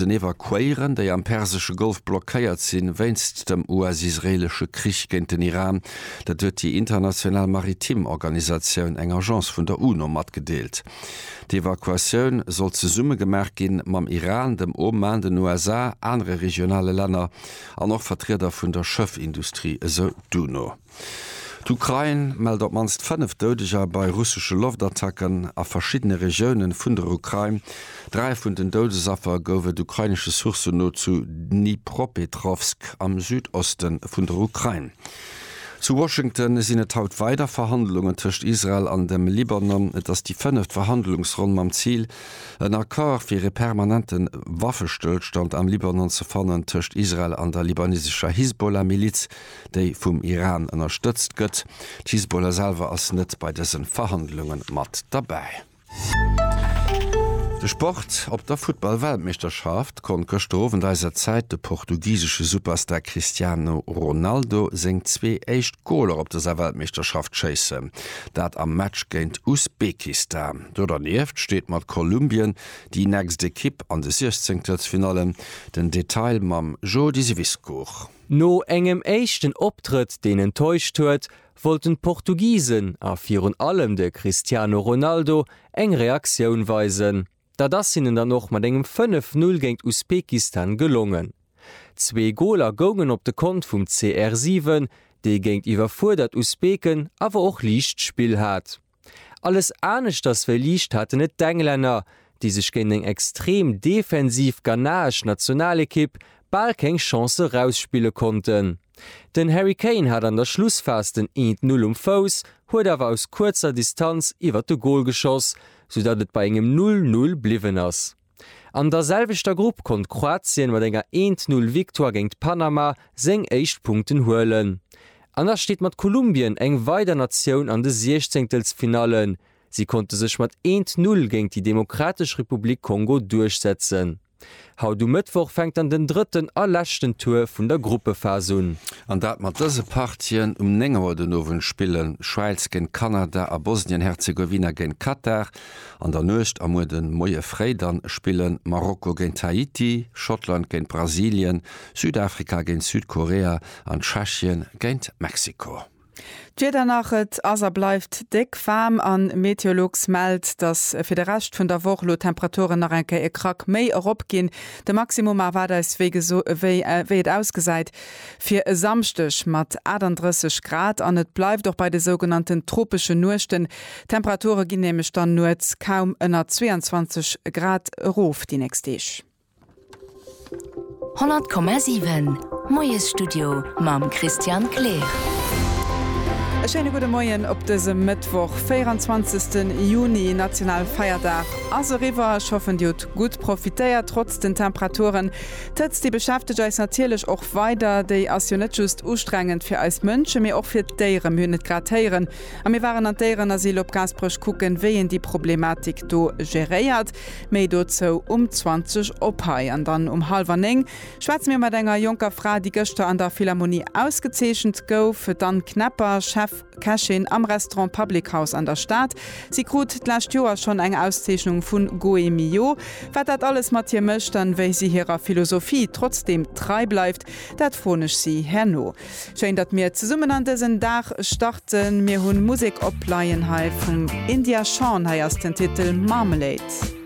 den Evakuéieren, déi am persesche Golf blockéiert sinn, wéinst dem US-israeelesche Krich géint den Iran. Dat huet déi international maritim Organisatioun, eng Agence vun der UNO, matgedeelt. D'Evakuatioun soll zesumme gemaach gi mam Iran, dem Oman, den USA, anere regionale Länner an och Vertrieder vun der Schëffindustrie, esou d'UNO. D'Ukrain mellt op d'mannst 5 Doudeger bei russesche Loftattacken a verschiddene Regiounen vun der Ukrain. Dräi vun den Doudesaffer gouf et ukrainesche Sourcen no zu Dnipropetrovsk am Südoste vun der Ukrain. Zu Washington sinn et haut weider Verhandlungen tëscht Israel an dem Libanon. Et ass déi fënneft Verhandlungsronn mam Zil, en Accord fir ee permanente Waffestëllstand am Libanon ze fannen tëscht Israel an der libanesescher Hisbollah-Miliz. déi vum Iran ënnerstëtzt gëtt. D'Hisbollah selwer ass net bei dësen Verhandlunge mat derbäi. De Sport, Op der Futtball-Weltmeeschterschaft konnt gëschter Owend eiser Zäit de portugisesche Superstar Cristiano Ronaldo seng zwee éischt Goler op dëser Weltmeeschterschaft schéissen, dat am Match géint Usbekistan. Do dernieft steet mat Kolumbien déi nächst Ekipp an de Siechzéngtelsfinallen. Den Detail mam Jody Wiskow. No engem éischten Optrëtt, deen enttäuscht huet, wollten d'Portugisen, a virun allem de Cristiano Ronaldo, eng Reaktioun weisen. Dat ass hinnen dann och mat engem 5, 0 géint Usbekistan gelongen. Zwee Goler goungen op de Kont vum CR7, dee géint iwwerfuerdert Usbeken awer och liicht Spill hat. Alles aneschters wéi liicht haten et d'Englänner, déi sech géint eng extrem defensiv ghanaesch Nationalekipp bal keng Chance erausspille konnten. Den Harry Kane hat an der Schlussphas den Eent Null um Fouss, huet awer aus kuerzer Distanz iwwert de Gol geschoss, soudatt et bei engem Null Null bliwwen ass. An der selwechter Grupp konnt Kroatien mat enger Eent-Null-Victoire géint Panama seng éischt Punkten huelen. An da steet mat Kolumbien eng weider Natioun an de Siechzéngtelsfinallen. Si konnte sech mat Eent-Null géint déi Demokratesch Republik Kongo duerchsetzen. Haut um Mëttwoch fänkt dann den drëtten a leschten Tour vun der Gruppephas un. An dat mat dëse Partien, Um 9 Auer den Owend spillen d'Schwäiz géint Kanada a Bosnien-Herzegowina géint Katar. An der Nuecht a muer den Moie fréi dann spillen Marokko géint Haiti, Schottland géint Brasilien, Südafrika géint Südkorea an Tschechien géint Mexiko. D'Wieder nach, Et ass a bleift déck waarm an Meteolux mellt, dass fir de Rescht vun der Woch elo d'Temperaturen nach eng Kéier e Krack méi eropginn. De Maximum erwaart eis wéi et ausgesäit. Fir e Samschdeg mat 38 Grad an et bleift och bei de sougenannten tropeschen Nuechten. D'Temperature ginn nämlech dann nuets kaum ënner 22 Grad erof déi nächst Deeg. 100,7 Moiesstudio mam Christian Kleer. E schéine gudde Moien op dësem Mëttwoch, 24 Juni. Nationalfeierdag ass eriwwer. Ech hoffen, Dir hutt gutt profitéiert, trotz den Temperaturen. D'Hëtzt, déi beschäftegt eis natierlech och weider. Déi ass jo net just ustrengend fir eis Mënschen, mee och fir d'Déieren. Mir hunn et grad héieren, a mir waren an d'Déierenasyl op Gaasperech kucken, wéi een déi Problematik do geréiert. Méi dozou um 20 op hei. An dann um hallwer néng schwätze mir mat enger jonker Fra, déi gëschter an der Philharmonie ausgezeechent gouf, d'Anne Knepper, Chef. Kächin am Restaurant Public House an der Stad. Si krut d'lescht Joer schonn eng Auszeechnung vu Goemio. Wat dat alles mat hir mécht an wéi si hirer Philosophie trotzdeem trei bleift, dat froen ech si herno. Schéin, datt mir zesummen an dësen Dag starten. Mir hu Musek opleien hei vum India Shawn. Hei ass den Titel Marmalade.